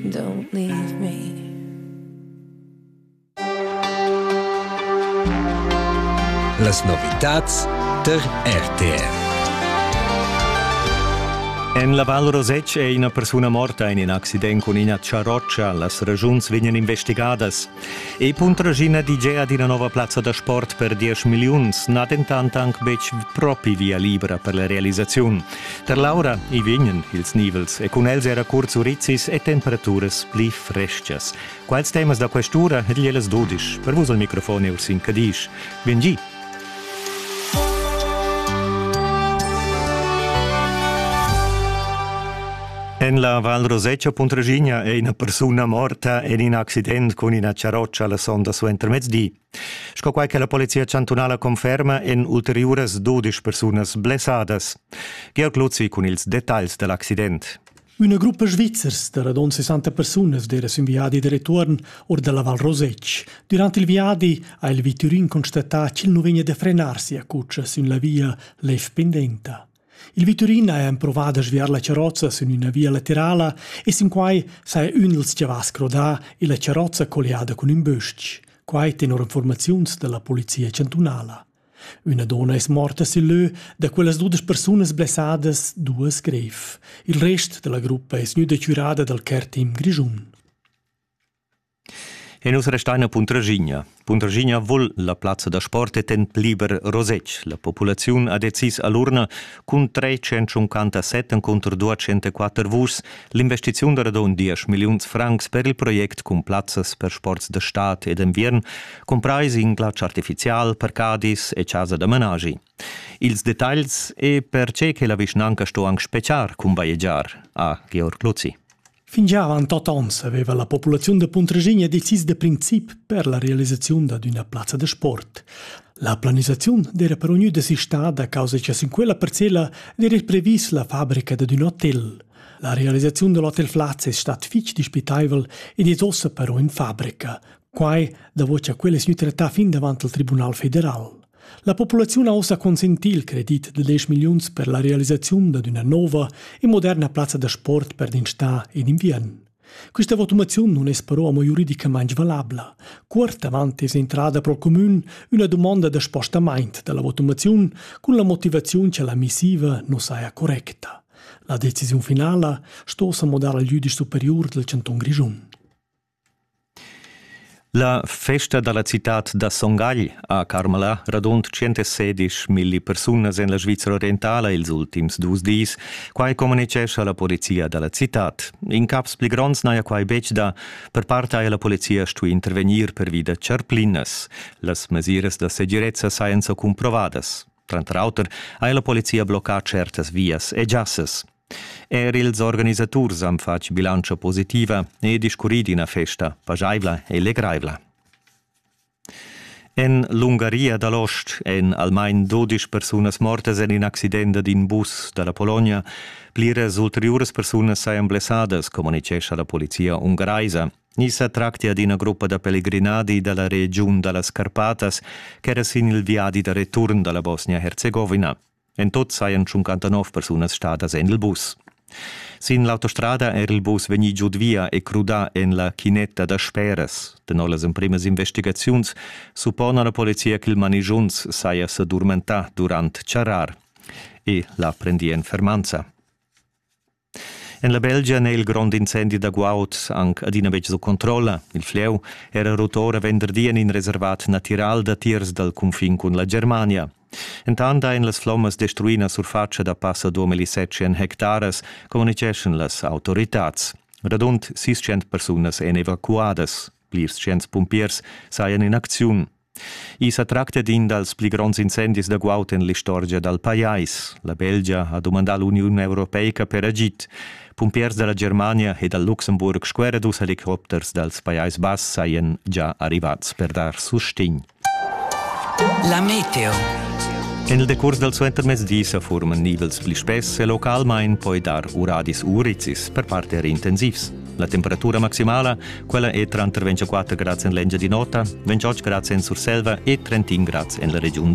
Don't leave me. Las novitats tar RTR. En la Val Rosec è ina persuna morta in in accident cun ina charrotscha. Las ragiuns vegnan investigadas. E Puntragina DJ ad ina nova plazza da sport per 10 milliuns n'ha dentant anc betg propi via libra per la realisaziun. Per l'aura i vegnan ils nivels e cun els era curts urizis e temperaturas pli frestgas. Quals temas da quest'ura ed ellas dudisch per vus al microfon e Ursin Cadisch. Vin gi! En la Val Roseccia Puntraginha è ina persuna morta en in accident cun ina charrotscha la sonda suentermezdi. Sco quai che la Polizia chantunala conferma, èn ulteriuras dudisch persunas blessadas. Georg Luzzi cun ils dettagls da l'accident. Üna gruppa svizzers da radon 60 persunas d'era sün viadi de retuorn or dalla Val Rosec. Durante il viadi ha il viturin constatà ch'el non vegna de frenar sia cuccia sün la via lef pendenta. Il viturin ha empruvà da sviar la charrozza sün üna via laterala e sinquai saja ün dals chavals crodà illa charrozza colliada cun ün bös-ch. Quai tenor infuormaziuns da la polizia chantunala. Üna donna es morta sül lö, da quellas dudesch persunas blessadas, duos grev. Il rest da la gruppa es gnüda chürada dal care team grischun. E nus restein a Puntraschigna. Puntraschigna vul la plazza da sport e ten liber Rosetsch. La populaziun ha decis a l'urna cun 357 enconter 204 vuschs l'investiziun da radon 10 milliuns francs per il project cun plazzas per sports da stad e d'enviern, cumprais in glatsch artificial, parcadis e chasa da managi. Ils detagls e per che che la vischnanca sto anc speciar cun bajegiar, ha Georg Luzi. Fingià avant tot ons aveva la populaziun da Puntregina decis da princip per la realisaziun dad üna plazza da sport. La planisaziun d'era però gnü desistada a causa cha sin quella parcella d'eira previs la fabrica dad ün hotel. La realisaziun da l'hotel Flaz es stat fich dispitaivel ed es ossa però in fabrica. Quai davo cha quel es gnü trattà fin davant al Tribunal federal. La populaziun ha ussa consentì il credit da 10 milliuns per la realisaziun dad üna nova e moderna plazza da sport per den stà in inviern. Questa votumaziun non es però amo giuridicamaing valabla. Cuort avant es entrada pro cumün üna dumonda da spostamaint da la votumaziun cun la motivaziun cha la missiva non saja correcta. La decisiun finala sto s'amodar al jüdisch superiur del Canton Grischun. La festa dalla citad da Son Gagl ha carmalà radund tschentasedisch milli persunas en la Svizra orientala ils ultims dus dis. Quai communitgescha la polizia dalla citad. In caps pli gronds n'haja quai betg dà. Per part haja la polizia stuì intervegnir pervi da charplinas. Las mesiras da segirezza sajan sa cumprovadas. Tranter auter ha la polizia bloccà certas vias e giassas. Er ils organisaturs han fatg bilantscha positiva e discurrì d'ina festa pajaivla e legraivla. En l'Ungaria dal ost èn almain dodisch persunas mortas en in accident d'in bus da la Pologna. Pliras ulteriuras persunas sajan blessadas, communitgescha la polizia ungaraisa. Ni sa tracti ad ina gruppa da pellegrinadi da la regiun da las Carpatas ch'era sin il viadi da return da la Bosnia-Herzegovina. En tut sajan 59 persunas stadas en il bus. Sin l'autostrada era il bus vegnì giud via e crudà en la chinetta da speras. Tenor las emprimas investigaziuns suppona la polizia ch'il manigiunz saja sa durmentà durant charrar. E l'ha prendì en fermanza. En la Belgia n'è il grond incendi da guaud anc adina betg sut controlla. Il Flieu era rotura venderdi en in reservat natiral datiers dal cunfin cun la Germania. Entant ein las flommas destruì la surfatscha da passa 2700 hectaras, communiceschan las autoritads. Radund 600 persunas èn evacuadas. Plirs cents pumpiers sajan in acziun. I sa tracta d'in dals pli gronds incendis da guaud en l'istorgia dal pajais. La Belgia ha dumandà l'Uniun europeica per agid. Pumpiers da la Germania e dal Luxemburg scueran dus helicopters dals Pajais Bass sajan già arrivads per dar sustegn. La meteo. En il decurs dal suentermezdi sa furman nivels pli spess e localmain poi dar uradis urizis per part er intensivs. La temperatura maximala, quella è tranter 24 grads en l'Engiadin'Ota, 28 grads en Surselva e 31 grads en la regiun